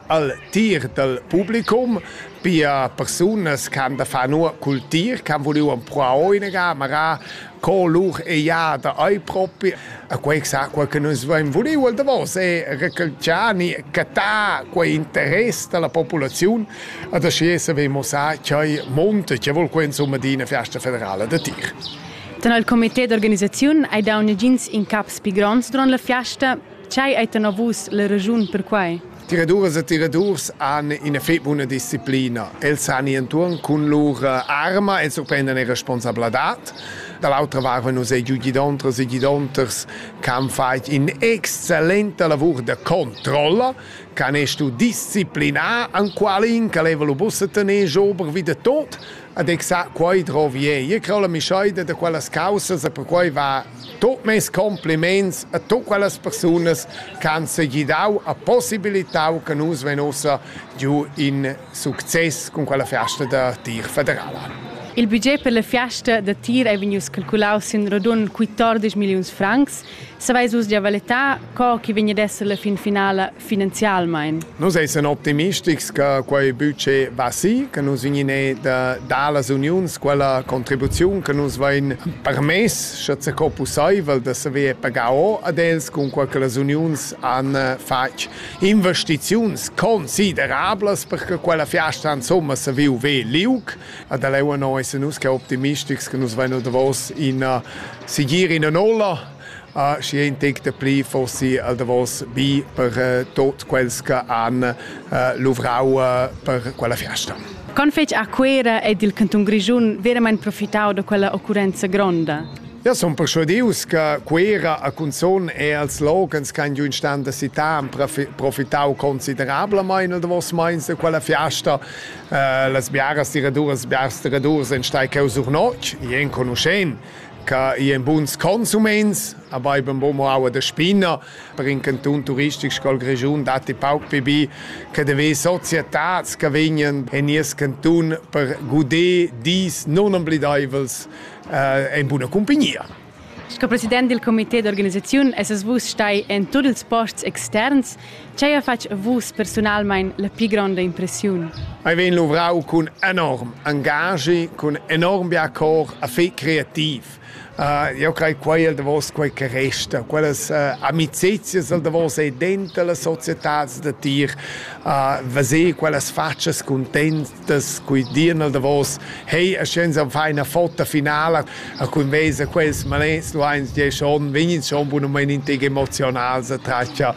al tir dal publicum, pia persunas che han da far nua cul tir, che han vuliu empruar oinaga, magari co lur eiada ei propi. A quei sa quei che nus vein vuliu al davos è recalciani catar quei interess dalla populaziun ad aschi saver mossar ch'ei monta che vol quei insomma di una festa federala da tir. Dann al comité d'organisaziun hai dau negins incaps pli gronds durant la fiasta Tgei ei tenor vus la regiun per quei? Tiraduras e tiradurs han ina fetg buna disciplina. Els han i entuorn cun lur arma e surprendan era responsabladad. Da l'autra vart vein nus ei giu gidontras e gidonters che han fatg in'excellenta lavur da controlla, che han stuiu disciplinar enqualin che leva lu buca tener giu ober vi da tot. Ad exact quei drovi ei. E crau la mischeida da quellas caussas e perquei va Tut mes compliments a tut quellas persunas che han segidau e possibilitau che nus vein ussa giu in success cun quella fiasta da tir federala. Il budget per la fiasta da tir ei vegnius calculaus sin radund 14 milliuns francs. Saveis vus gia valetar co che vegn ad esser la fin finala finanzialmein. Nus essan optimistics che quei buca va si, che nus vegnine da dallas uniuns quella contribuziun che nus vein permess, sche co pusseivel, da saver pagar o ad els cunqual che las uniuns han fatg investiziuns considerablas per che quella fiasta insomma se viu ve liug. Ad leu no essan nus che optimistics che nus vein davos in sigir in nolla Ah, schi ein tic da pli forsi al davos bi per uh, tot quels che han uh, luvrau uh, per quella fiasta. Con fetg a Cuera ed il canton Grischun veramente profitau da quella occurrenza gronda? Ja, son persuadius che Cuera a Cunzon e als logens can giun stand da città han profitau considerablement nel davos meins da quella fiasta. Uh, las biaras tiraduras, biars tiradurs en stai cheu sur notg, i enconuschen. che i en buns consuments, aber eben wo man auch der Spinner per in Kanton turistisch scol Region dat die pauc pibi che de ve Societats che vegnen in nies Kanton per gudé dis non oblidaivels eh, in buona compagnia. Sco president del comité d'organisaziun es es vus stai en tuts ils posts externs Tgei ha fatg vus persunalmein la pli gronda impressiun? Ei vegn luvrau cun enorm engagi, cun enorm bia cor, a fei creativ. Uh, io crei quei el davos quei che resta, quellas uh, amicizias el davos ei dentro la societad da tir, uh, veser quellas faccias contents, das qui dir al davos hey a scienza fa una foto finale a cun vesa quels malens du eins die schon vegin schon bunament in teg emotional se traccia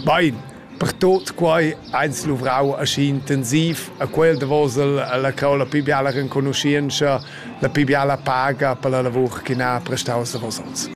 bain per tot quai eins luvrau aschi intensiv a quel davos la caola più biala renconoscienza la più biala paga per la lavur che n'ha prestau a vosotros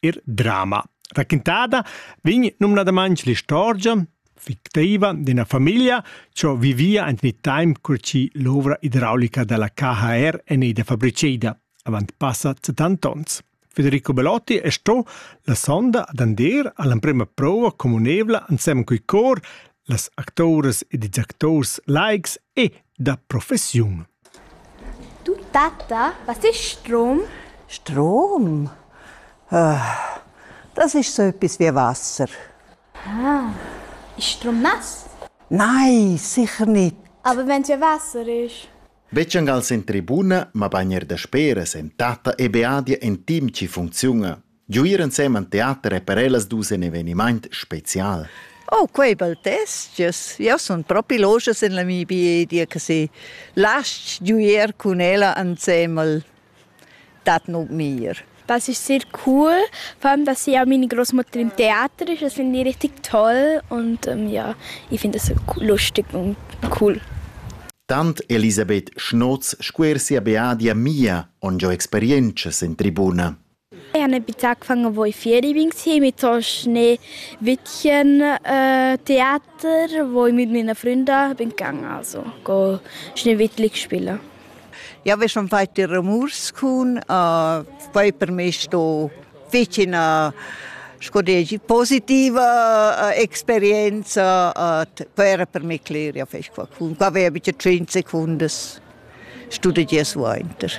ir drama. Raquintada vegn numnadamain l'istorgia fictiva d'ina famiglia che vivia en il time cur che l'ovra idraulica della KHR è fabbricada, avant passa 70 ans. Federico Belotti è sto la sonda ad andir all'emprima prova communevla insieme coi cor Las acturas ed ils acturs laics e da professiun. Tu tatta, was ist Strom? Strom? Äh, das ist so etwas wie Wasser. Ah, ist Strom nass? Nein, sicher nicht. Aber wenn es ja Wasser ist? Vecciangal in tribuna, ma bagner da speras en tata e beadia en team ci funziona. Giu ir ensemen teater è per ellas dus in evenimaint spezial. Oh, quei bel testges. Io sun propi logias in la mia biedia che si lasci giuier cun ella ansemel dat nug mir. Das ist sehr cool, vor allem, dass ja meine Großmutter im Theater ist, das finde ich richtig toll und ähm, ja, ich finde das lustig und cool. Tant Elisabeth Schnotz scuer sia beadia mia ongiò experientschas in tribuna. Eau n'he bittà ch'fan avoi fieri bin insieme, tosch ne witchen teater, vo ün mit mia fründa, bin can also, co schnee witlig spilla. Jau vez schon fait die Rumurs cun, poi per me sto fich üna sco degi positiva experienza, quai era per me cler, jau fec qualcun, qua aveia bitte tschient secundas studegias suainter.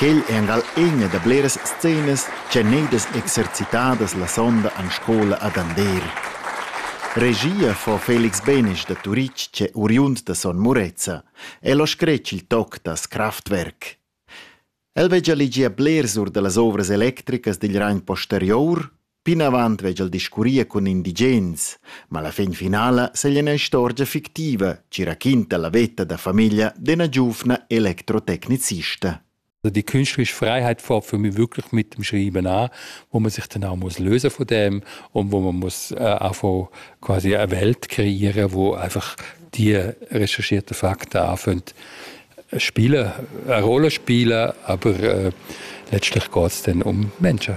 Quel è angal ina da bleras scenas ch'han edas exercitadas la sonda en scola ad Andeer. Regia fa Felix Benesch da Turitg ch'è oriund da Son Murezza. El ha scretg il toc da Kraftwerk. El veggia legier blers or da las ovras electricas digl Rhein posterior Plinavant vegl discurrir cun indigens, ma la fin finala segl ina istorgia fictiva ci raquinta la veta da famiglia d'ena giuvna electrotecnicista. Also die künstlerische Freiheit fängt für mich wirklich mit dem Schreiben an, wo man sich dann auch muss lösen von dem und wo man muss äh, einfach quasi eine Welt kreieren, wo einfach die recherchierten Fakten anfangen spielen, eine Rolle spielen, aber äh, letztlich geht es dann um Menschen.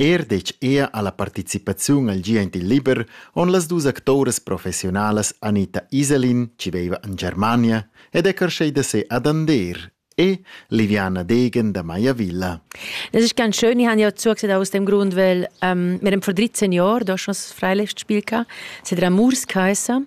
Er detg ea alla participaziun al gi aint il liber on las dus actoras professiunalas Anita Iselin, chi veiva in Germania, ed è carschei da se ad Ander e Liviana Degen da Maiavilla. Das ist ganz schön. Ich habe ja zugesagt aus dem Grund, weil ähm, wir haben vor 13 Jahren da schon das Freilichtspiel gehabt. Es hat Amours geheißen.